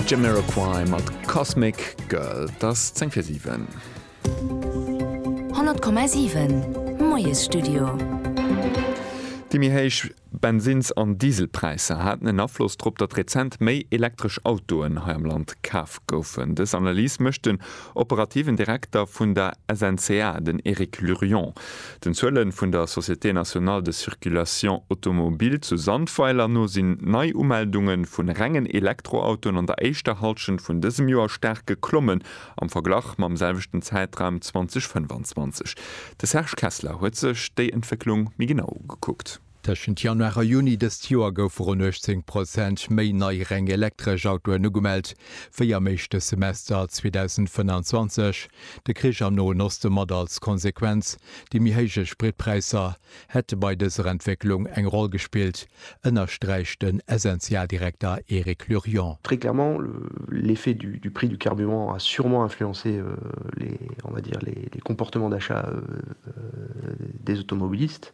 Jamiroquai mat Cosmic Girl, et ass zéng fir siwen. 100,7 Moiesstudio. Déi méi héich Bensinns an Dieselpräisser haten en Afloss drop, datt rezent méi elektresch Autoen hei am Land kaf goufen. Dës Analys mécht den Operativen Direkter vun der SNCA, den Eric Lurion, den Zuele vun der Société Nationale de Circulation Automobile zu Sandweiler no sinn d'Neiumeldunge vun rengen Elektroautoen an der éischter Hallschent vun dësem Joer staark geklommen am Verglach mam selwechten Zäitraum 2025. De Serge Kessler huet sech déi Entwécklung méi genau ugekuckt. Tëschent Januar a Juni dëst Joer goufe ronn 18 Prozent méi nei reng elektresch Autoen ugemellt wéi am éischte Semester 2025. De Krich am Noen Oste mat als Konsequenz déi méi héije Spritpräisser hätte bei dëser Entwécklung eng Roll gespillt, ënnersträicht den SNCA-Direkter Eric Lurion. Très clairement, l'effet du prix du carburant a sûrement influencé les, on va dire, les comportements d'achat des automobilistes.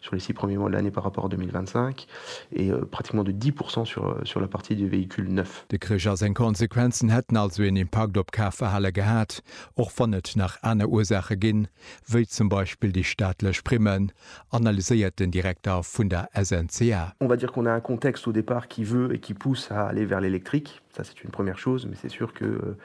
sur les six premiers mois de l'année par rapport à 2025 et pratiquement de 10 % sur sur la partie des véhicules neufs. De Krich a seng Konsequenzen hätten also een Impakt op d'Kafverhale gehat, och wann et nach aner Ursaache ginn, wéi zum Beispill déi staatlech Primmen, analyséiert den Direkter vun der SNCA. On va dire qu'on a un contexte au départ qui veut et qui pousse à aller vers l'électrique, ça c'est une première chose, mais c'est sûr que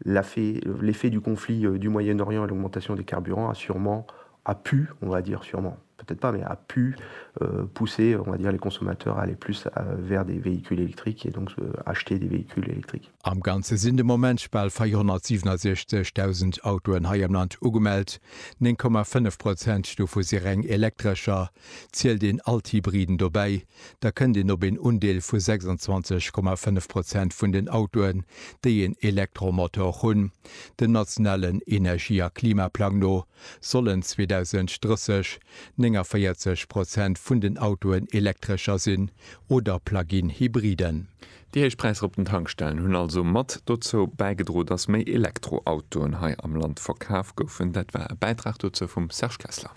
la fait l'effet du conflit du Moyen-Orient et l'augmentation des carburants a sûrement a pu, on va dire sûrement, peut-être pas, mais a pu pousser, on va dire, les consommateurs à aller plus vers des véhicules électriques et donc acheter des véhicules électriques. Am Ganze sinn de Moment bal 467.000 Autoen hei am Land ugemellt, 9,5 Prozent dovu si reng Elektrescher. Zielt een all d'Hybriden dobäi, da kënnt een op een Undeel vu 26,5 Prozent vun den Autoen, déi een Elektromotor hunn, dem nationalen Energie a Klimaplang no. Sollen 2030 49 Prozent vun den Autoen Elektrescher sinn oder Plug-in Hybriden? Déi héich Präisser op den Tankstellen hunn also mat dozou bäigedro, datt méi Elektroautoen hei am Land verkaf goufen. Dat war e Bäitrag dozou vum Serge Kessler.